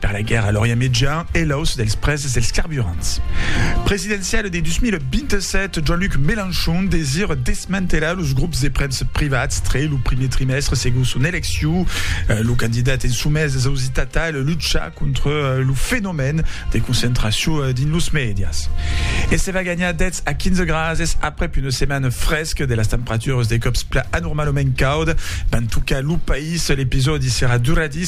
Per la guèrra a l'Orient Mejan e l'auç dels prèses dels carburants presidenciale de 2027, Jean-Luc Mélenchon desire desmantelar los grops de premsa privats tre lo primier trimèstre segon son eleccion. Lo candidat en somés es ausit atal luchar contra lo fenomèn de concentracion dins los mèdias. E se va ganhar 10 a 15 grases aprèp una setmana fresca de las temperaturas de còps plan anormalament cauda van tocar lo país. L'episòdi serà duradís.